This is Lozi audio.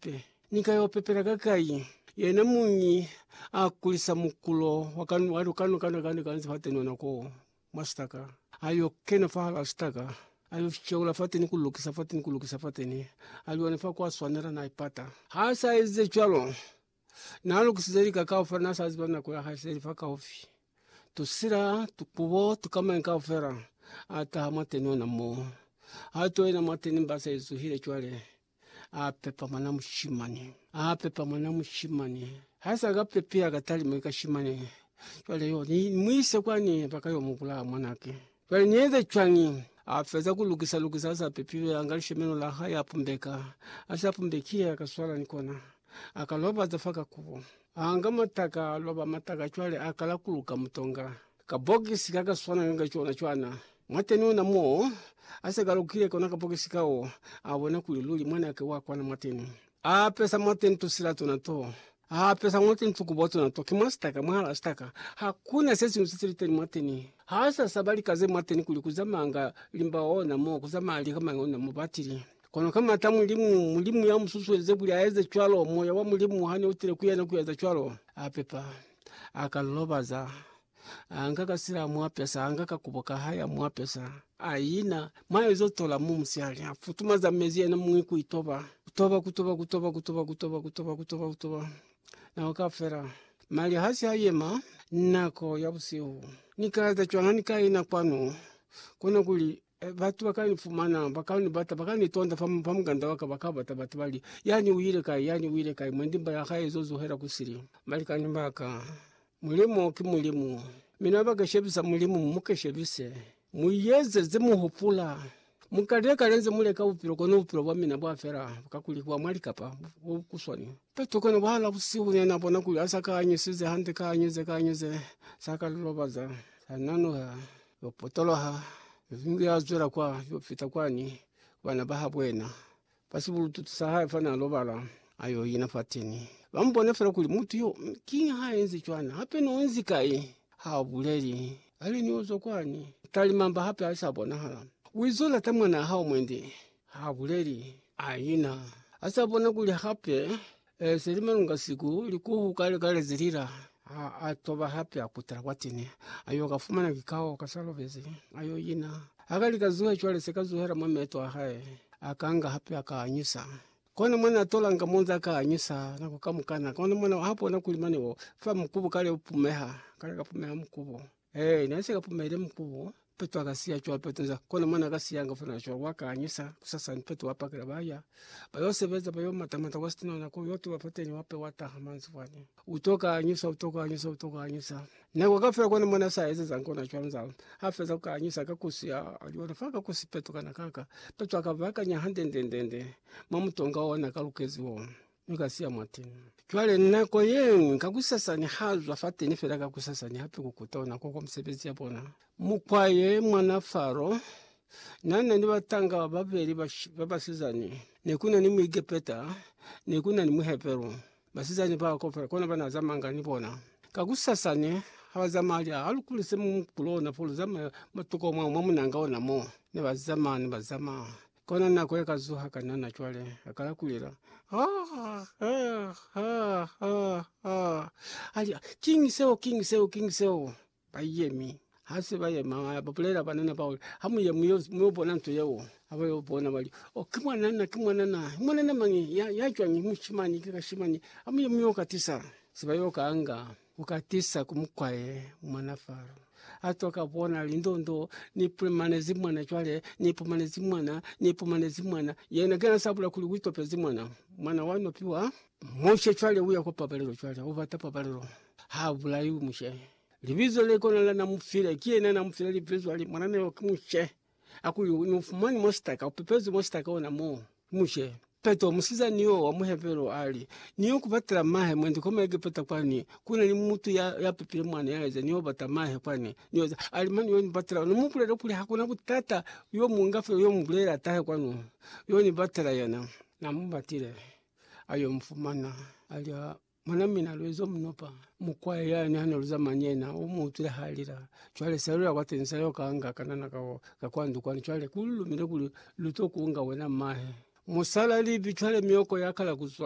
Pe. Ni ka yo pepela ka kai? Yena muñi a kulisa mukulo wa ka wa ka no ka no ka no ka fa teni ona ko mwa sitaka. A yo kena fa hala sitaka, a yo sheula fa teni ku lukisa fa teni ku lukisa fa teni. A lione fa kwa swanela na ipata. Ha sa eze cwalo, na lukisize lika kaufela na sa ziba nako ya hae se li fa kaufi. Tusila, tukubo, tukamañi kaufela a taha mwa teni ona mo. Ha to yena mwa teni mba se zuhile cwale. A pepa mwana mushimani. A pepa mwana mushimani. Ha sa ka pepea ka talima ka shimani. Cwale yo ni mu ise kwani ba ka yo mu bulaya mwanake. Cwale ni eze cwañi? A feza ku lukisa lukisa a sa pepilwe, a nga lishemelo la hae a pumbeka. Ha si a pumbekile, a ka swala ni kona. A ka lobaza fa ka kubo. A nga mataka, a loba mataka cwale a kala ku luka mutonga. Kabokisi kakaswananga ka cona cwana. Mwateni ona mo asekalukile kona kabokisi kao, abona kuli luli mwanake wa kwana mwateni. Aapesa mwateni tusila tuna to. Aapesa mwateni tukubo tuna to. Ki mwa sitaka, mwala sitaka. Hakuna sesiñwi sesiliteni mwateni. Haasasaba lika ze mwateni kuli kuzamanga limba ona mo, kuzamanga lika mañi ona mo. Batili. Kono kamata Mulimu, Mulimu yamususuelize kuli aeze cwalo, Moya wa Mulimu hane utile kuyena kueza cwalo, apepa. aka lilobaza, anga ka sila mwapesa, anga ka kubo ka haya mwapesa. Ayina, mwayo zo tola mu musiali, afutuma za mezi yena mwi ku itoba. Kutoba, kutoba, kutoba, kutoba, kutoba, kutoba, kutoba, kutoba. Nako ka fela. Mali hasi ha yema, nako ya busihu. Ni ka eza cwanga ni ka ina kwanu, kona kuli E, batu baka ni fumana, baka ni bata, baka ni tonda fa, fa mukanda waka, baka bata batu bali, yani uile kai, yani uile kai, mwendi mba ya hae izo zuhela kusili. Balikani baka, Mulimu ki Mulimu. Mina baka shebisa Mulimu, muka shebise. Mu yeze ze mu hupula. Muka leka le nze mu leka bupilo, kono bupilo bwa mina bwa fela, ka kuli bwa mwa likapa, bu kuswani. Petro kono bahala busihu ne na bona kuli ha sa ka anyusize hande, ka anyuze, ka anyuze, sa ka lilobaza, sa nanuha. Yo potoloha, Yovingi ya zwela kwa yo fita kwani ku bana ba habo yena. Fa sibulututu sa hae fana lobala, a yo ina fateni. Ba mu bona fela kuli mutu yo, mi kiñi ha enzi cwana? Hape ni onzi kai? Ha u buleli. Kale ni uzwa kwani, talimamba hape ha sa bonahala. U izo lata mwanaa hao mwendi. Ha buleli. A ina. A sa bona kuli hape E se li malunga siku, likuhu kale kale ze lila. A, a toba hape a kutela kwa tene, a yo ka fumana kikao ka sa lobezi, a yo ina. Ha ka li ka zuhe cwale se ka zuhela mwa meeto a hae, a ka nga hape a ka anyusa. Kona mwa na tolanga mo nza ka anyusa nako kamukana, kona mwa na ha bona kuli mane o fa mukubu kale u pumeha, kale ka pumeha mukubu. Ee, ne si ka pumeli mku Petu aka siya cwalo Petu nza kona mwana aka siyanga fana cwalo wa ka anyisa kusasa ni Petu wa pakela baya ba yo sebeza ba yo mata mata kwa sitinona ko yo tuba fateni wa pe wa taha manzi fani u to ka anyisa u to ka anyisa u to ka anyisa ne kwa kafela kona mwana sa eze za nkona cwalo nza ha feza ka anyisa ka kusi ya aliona faka kusi Petu kana kaka Petu aka vakanya hande nde nde nde mwa mutonga ona ka lukezi wo. Mi ka siya mwateni. Cwale nako yeñwi kakusasani ha zwa fateni fela kakusasani hape ku kuta ona ko kwa misebezi ya bona. Mukwa ye mwana Faro nana ni batanga babeli ba basizani, nekuna ni Muegepeta, nekuna ni Muheberu. Basizani bao kaufela kona bana zamanga ni bona. Kakusasani ha ba zamaya lya ha lukuli se mu kulona fo luzamaya matuko mwa munanga ona mo. Ne ba zamaya ne ba zamaya. Kona nako ye ka zuha ka nana cwale, a kala kulela, Haa! Haa! Haa! Haa! Haa! A li, Kiñi seo? Kiñi seo? Kiñi seo? Ba yemi. Ha se ba yema, ba bulela banana bao, Ha mu ye mu yo bona nto yeo. Ha ba yo bona, ba li, Oh, ki mwanana, ki mwanana. Mwanana mañi? Ya cwañi? Mushimani, ki kashimani. Ha mu ye mu yo ka tisa. Se ba yo ka anga. Ku ka tisa ku mukwaye mwana faro. A twa ka bona lindondo ni pumanezi mwana cwale ni pumanezi mwana ni pumanezi mwana yena ke na sabula kuli wi topezi mwana mwana wa no piwa mushe cwale uya kwa pabalelo cwale u bata pabalelo ha bulaiwi mushe libizo le kona la na mufile ki yena na mufile libizo ali mwana na yo ki mushe Akuli u no fumani mwa sitaka, u pepezi mwa sitaka ona mo. Mu she. Peto, musizani yo wa mu Hebero, a li, Ni yo ku batela mahe mwendi kwa mwa Egepeta kwani. Ku na ni mutu ya, ya pepile mwana ya eza, ni yo bata mahe kwani. Ni eza. A li, Mani yo ni batela ona. Mu bulele kuli, Hakuna butata, yo mu nga fela, yo mu bulele atahe kwanu. Yo ni batela yena. Na mu batile, a yo mu fumana. A li, Ha. Mwana mina Luezo Mnopa mukwaya yani hana luzama ni yena umuutwile halila cwale selula kwa teni sayo kanga kanana kao ka kwa ndukwana cwale kululumile kuli luto kunga wena mahe musala libi cwale mioko yakala kuzwa